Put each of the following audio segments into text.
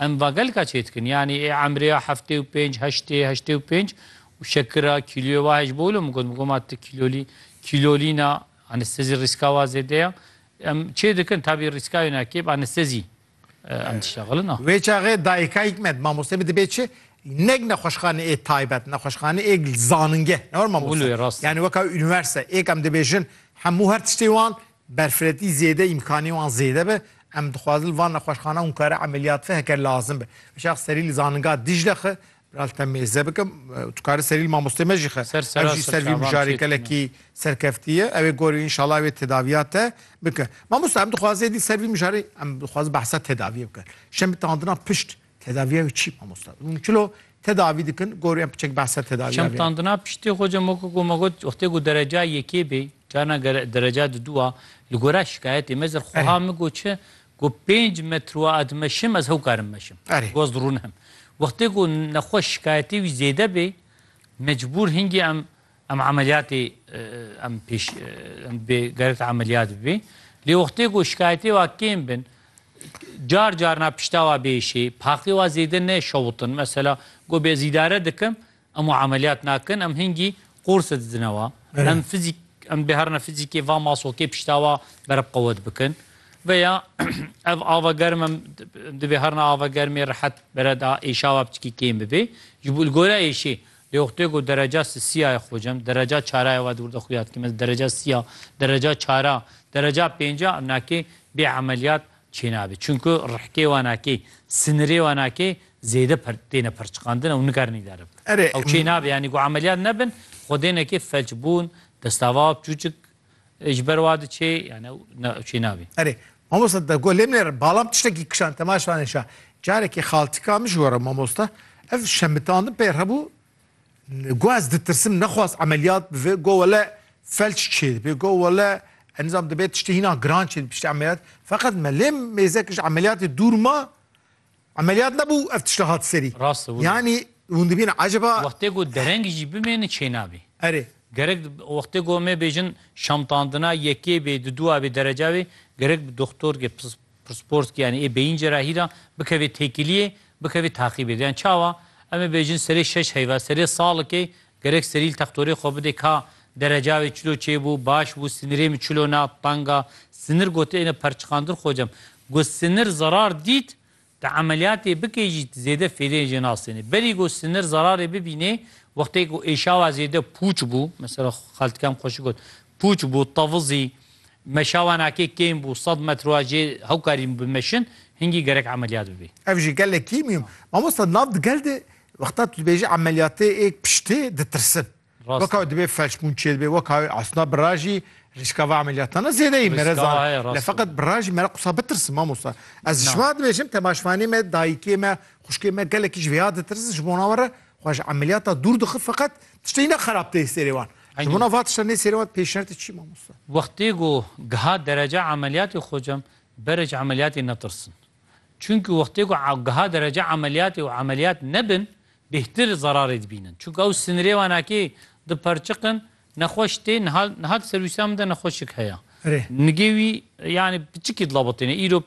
Em vagelka çêdikin yanî ê emrêya heftê û pênc, heştê, heştê û pênc û şekira kîloyê wa hej bol û min got, min got ma tu kîlolî kîlolîna anestezî rîska wa zêde ya. Em çêdikin tabî rîska wina kêb anestezî em dişexilin a. Wê çaxê dayikayîk me di mamosteyê bi dibe çi? Neg nexweşxane ê taybet, nexweşxane ê zaningeh ne were mamoste. Yanî weka unîversete êk em dibêjin hemû her tiştê wan berfiretî zêde îmkanî wan zêde be, em dixwazin li van nexweşxana hûnkare emeliyat ve heke lazim be. Şex serî li zaninga Dîcle xi, Biral te mêze bike, tu karî serî li mamosteyê me jî xi. Ser Ev jî ser vî mijarê gelekî serkeftî ye. Ew ê gorî înşallah ew ê tedaviya te bike. Mamosta em dixwazin êdî ser vî mijarê em dixwazin behsa tedaviyê bikin. Şemî tandina pişt Tedaviya wî çî mamosta? Hûn çilo tedavî dikin? Gorî em piçek behsa tedaviya vê. Çemtandina piştî xwe cem weke ku me got wextê ku dereca yekê bê carna dereca di dû a li gora şikayetê me zer xweha min got çi ku pênc metroa ez meşim ez hew karim meşim goz rûn him. Wextê ku nexweş şikayetê wî zêde bê mecbûr hingî em Em emeliyatê em pêş em bê gerek emeliyat bibê. Lê wextê ku şikayetê wa kêm bin car car na pişta wa bêşê, paqê wa zêde ne şewitin. Mesela ku bê ez îdare dikim, em û emeliyat nakin, em hingî qorse didine wa. Em fizîk em bê herna fizîkê va masokê pişta wa berb qewet bikin. Veya ev ava germ em dibê herna ava germê rehet bere da êşa wa piçkî kêm bibê. Ji bo li gore êşê Lê oxtê ku dereca sîya ye xocem, dereca çara ye, wadi wirde xuya dikêm ez dereca sîya, dereca çara, dereca pênca nakê bê emeliyat çênabê. Çunku rihkê wan akê, sinirê wan akê zêde têne perçiqandin ew nikarinî dere bidin. Ew çênabê yanî ku emeliyat nebin xwedênekê felçbûn, destava, piçûçik Ji ber wa diçê yani ew ne çê nabî. Erê mamosta da go lêmnêre balam tiştekî kişan temaş vane şa. Carekî xaltika min ji gore mamosta ev şemitandin pê hebû go ez ditirsim nexwaz emeliyat bive go wele felç çê dibê go wele enizam dibê tiştê hîna giran çê piştî emeliyat feqet me lêm mêzek ji emeliyatê dûr ma Emeliyat nebû ev tişta hat serî. Rast e wilo. Yanî hûn dibînin eceba. Wextê ku dereng jî bimêne çênabê. Erê. Gerek wextê ku em ê bêjin şamtandina yekê bê di dûa bê dereca bê gerek bi doxtorkê pirsporzkê yanî ê beyîncê ra hîra bikevê têkiliyê bikevê taqîbê. Yan çawa? Em ê bêjin serê şeş heyva serê salikê Gerek serîl textorê xwe bidê ka dereca wê çilo çêbû, baş bû, sinirê min çilo na, tanga, sinir gotêne perçiqandir xocam. Go sinir zerar dît, tu emeliyatê bikê jî zêde fêdeyê jê nasêne. Berî go sinir zerarê bibînê, wextê ku êşawa zêde pûç bû, mesela xaltikem xwe şi got, pûç bû, tevizî, meşawa nakê kêm bû, sed metr wa jê hewkarî bimeşin, hingî gerek emeliyat bibê. Ev jî gelekî mîm. Mamosta nav di gel de Wexta tu dibêjî emeliyatê ê piştê ditirsin. Weka wê dibê felçbûn çê dibê weka wê esna bira jî rîska va emeliyatana zêdeyî mere zan. Le feqet bira jî mere qisa bitirsin mamosta. Ez ji şima dibêjim temaşvanê me dayikê me xuşkê me gelekî ji vê ya ditirsin ji bona we re xwe ji emeliyata dûr dixin feqet tiştê ne xerab tê sêrê wan. Ji bona va tişta nê sêrê wan pêşertê çi mamosta? Wextê ku giha derece emeliyatê xocem berê ji emeliyatê netirsin. Çunki wextê ku giha derece emeliyatê û emeliyat nebin bêhtir zerarê dibînin. Çunki ew sinirê wan akê diperçiqin nexweş tê niha niha di ser wîsa min de nexweşik heye. Nigê wî yanî piçikî dilabitêne. Îro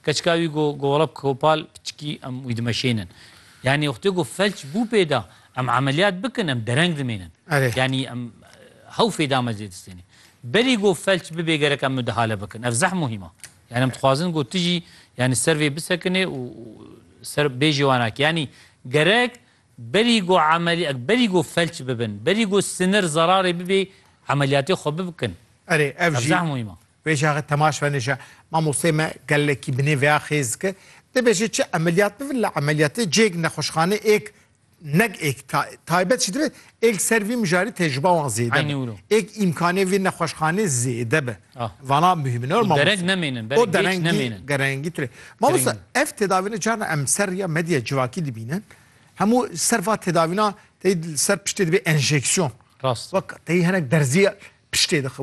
keçika wî go go wela Kopal piçikî em wî dimeşênin. Yanî wextê ku felç bû pê de em emeliyat bikin em dereng dimênin. Yanî em hew fêda me zê distêne. Berî go felç bibê gerek em midihale bikin. Ev zeh muhîm a. Yanî em dixwazin ku tu jî yanî ser vê bisekinê û ser bêjê wan a ki yanî gerek berî ku emelî berî ku felç bibin, berî ku sinir zerarê bibê emelîyatê xwe bikin. Erê ev jî Ebzeh muhîma. Vê jaxê temaş venê ji mamosteyê me gelekî binê vêya xêz dike. Dibêje çi emelîyat bibin li emelîyatê cêk nexweşxanê êk Nek êk taybet jî dibe, êk ser vî mijarî tecrüba wan zêde Eynî be. wilo. Êk îmkanê vê nexweşxanê zêde be. Ah. Vana muhîm ne mamosta. Derek nemênin, berek O geç derengî, nemênin. derengî tire. Mamosta Derengî. ev tedavîne carna em ser rêya medya civakî dibînin. Hemû ser va tedavîna tey li ser piştê dibe enjeksiyon. Rast. Wek tey hinek derzîya piştê dixe.